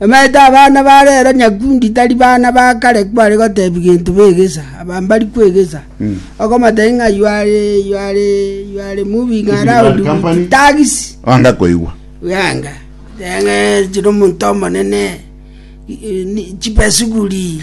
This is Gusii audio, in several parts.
Nobaite abana ba rero nyakundi tari bana ba kare kware goteebia gento begesa, aba mbari kwegesa, okomoteebia ng'a you are, you are, you are moving around with tags. Anga koigwa. Yanga. Yanga chiri omonto omonene. Chipesuguri.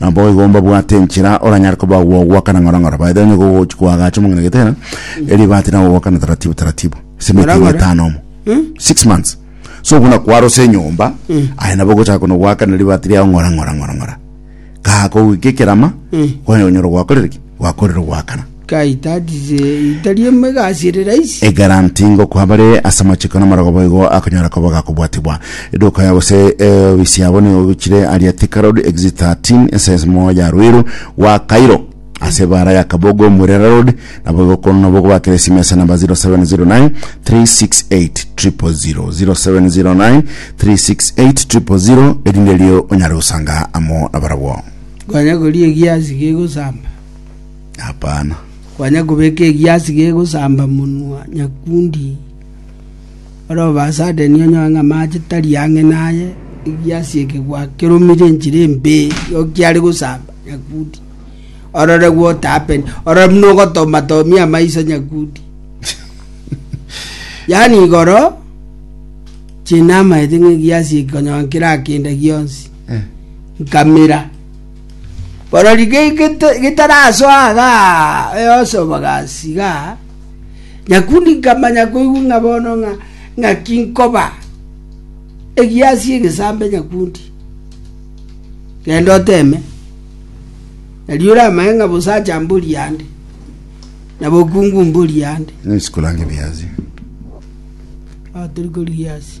Naboigo mbabwate enchera oranyare koba gwogwakana ng'orong'oro. By the way, onye gogochi koagacha omong'ina getera, eribate na gogwakana taratibu taratibu. Ase emete Ng'orong'oro? etano omo. Six months. So buna kwarosa enyomba, aye nabo ogochaka kono gwakana ribati riao ng'ora ng'ora ng'ora ng'ora. Kagoika ekerama, kwanya onyora gwakorire ki? Gwakorire ogwakana. Ekero ntikokoa bare ase amachiko namarogo boigo akonyora koba gakobwatigwa. Eduka yao gose eofisi yabo nigo egochire aria Thika Road, Exit 13, ense ensemo ya Ruiru rwa Cairo, ase ebara ya Kabogo, Murera Road. Naboigo kono nabwo okobakera esimesa namba 0709 368 000, 0709 368 000, erinde erio onyare gosanga amo nabarabwo. Hapana. Kwanya kobeka egiasi gegosamba monwa nyakundi, ore obasadeni onyore ng'a amache tari ang'e naye, egiasi eke gwakeromire enchera embe yokiare gosamba nyakundi. Orore what happened. Orore buna ogotoma tomia amaiso nyakundi. yaani igoro chinamaete ng'a egiasi eke onyora nkirakenda gionsi Eh. nkamera Barori getarasoa iga Yosefu bagasiga nyakundi nkamanya koigwa ng'a bono ng'a ng'aki nkoba egiasi egesambe nyakundi genda oteme erio oramanye ng'a bosacha mbori ande na bokungu mbori ande Nisi kurange biasi. Ah, turi kuri giasi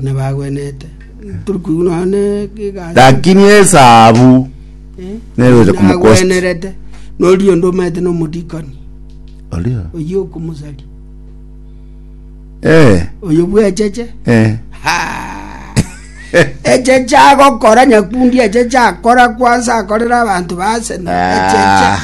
nabagwenete turi koigwa nonya ne egasi Lakini esabu nere ocha kumukosta. nagwenerete norio onde omanyete na omodikoni Oria. oyio okomosari Eh, oyo bwecheche eh. echeche agokora nyakundi echeche akora kwansa akorera abanto ba Arsenal echeche Ah.